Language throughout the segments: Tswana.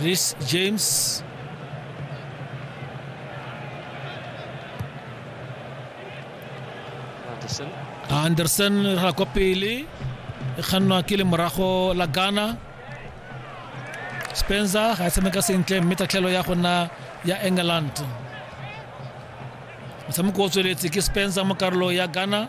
Reece James. Anderson. Anderson ra kwa pele e kgannwa ke le morago la Ghana Spencer ga e tshameka sentle mme tatlhelo ya gona ya England motshameko o tsweletse ke Spencer mo karolo ya Ghana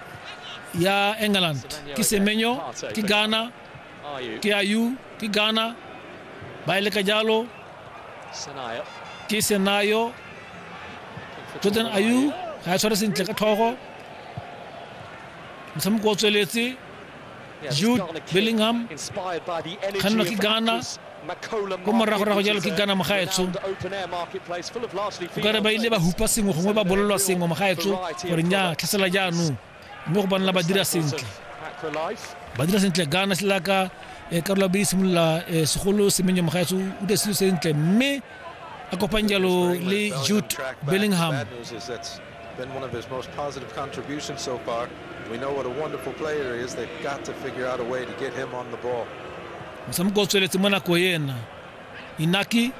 Il y a England, ki Semenyo, ki Ghana, ki Ayou, ki Ghana, Baile Kajalo, ki Senayo, Jordan Ayou, ga e tshware sentle ka tlhogo. Motshameko o tsweletse Jude Bellingham kgannwa ke Ghana ko moragorago jalo ke Ghana mogaetsho o kare ba ile ba hupa sengwe gongwe ba bolelwa sengwe mogaetsho gore nya tlhasela jaanong mme go banela ba dira sentle ba dira sentle Ghana se laka eh, karolo be e simolola eh, segolo semenye mogaetsho o dire selo sentle mme a kopang jalo le Jude Bellingham been one of his most positive contribution so far we know what a wonderful player is they got to figure out a way to get him on the ball mosamoko o tsweletse mo nako ena inaki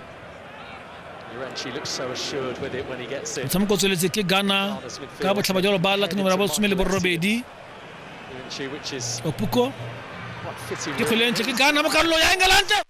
motshameko o tsweletse ke ghana ka botlhaba jalo ba lake nomera bosome le borobedi opuko ke kgwele ntle ke ghana mo karolo ya engelante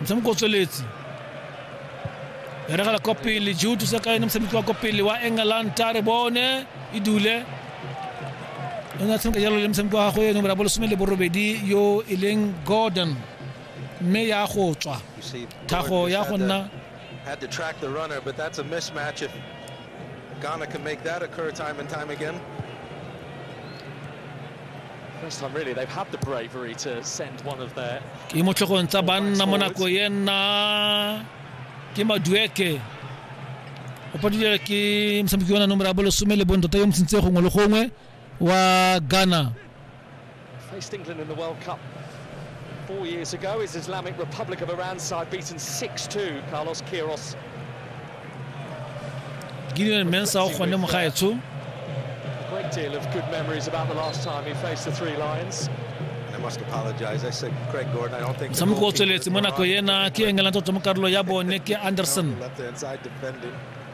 motshameko o tsweletse beregela kwa pele jutu sa kaene motshameko wa kwa pele wa england tare bone e dule o ne a tshameka jalo le motshameko wa gagwe eno bra bolesome le borobedi yo e leng gordon mme ya go tswa thago ya go nna had to track the runner, but that's a mismatch if Ghana can make that occur time and time again. First time really they've had the bravery to send one of their ke mo tlhogong tsa banna mo nako e nna ke madueke o padile ke mosameki yona nomoro ya bolesome le bontoto yo motshintse gongwe le gongwe wa Ghana. Faced England in the World Cup four years ago. His Islamic Republic of Iran side beaten 6-2. Carlos Queiroz. Gideon Mensah go ne mogaetsho. A great deal of good memories about the last time he faced the Three Lions. motshameko o tsweletse mo nako ena ke engela tota mo karolo ya bone ke anderson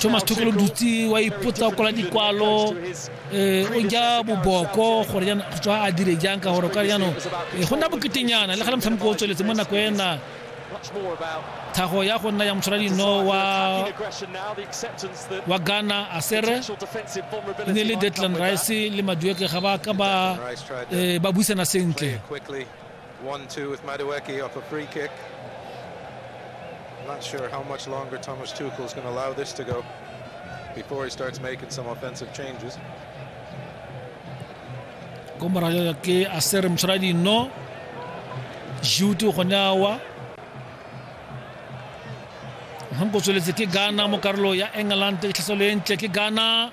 thomas thokolo dutse wa ipotsa o kwala dikwalo um eh, o ja boboko gore jaana tswa a dire jang ka gore ka jaanong eh, go nna boketenyana le ga le motshameko o tsweletse mo nako ena tlhago ya go nna ya motshwara dino wa wa ghana asere ne le deadland rice le madueke ga ba ka ba eh, buisana sentle One two with Madueke off a free kick. I'm not sure how much longer Thomas Tuchel is going to allow this to go before he starts making some offensive changes. ko morago ke a se re motshwara dino jutu gone awa nko tsweletse ke ghana mo karolo ya england tlhaselo e ntle ke ghana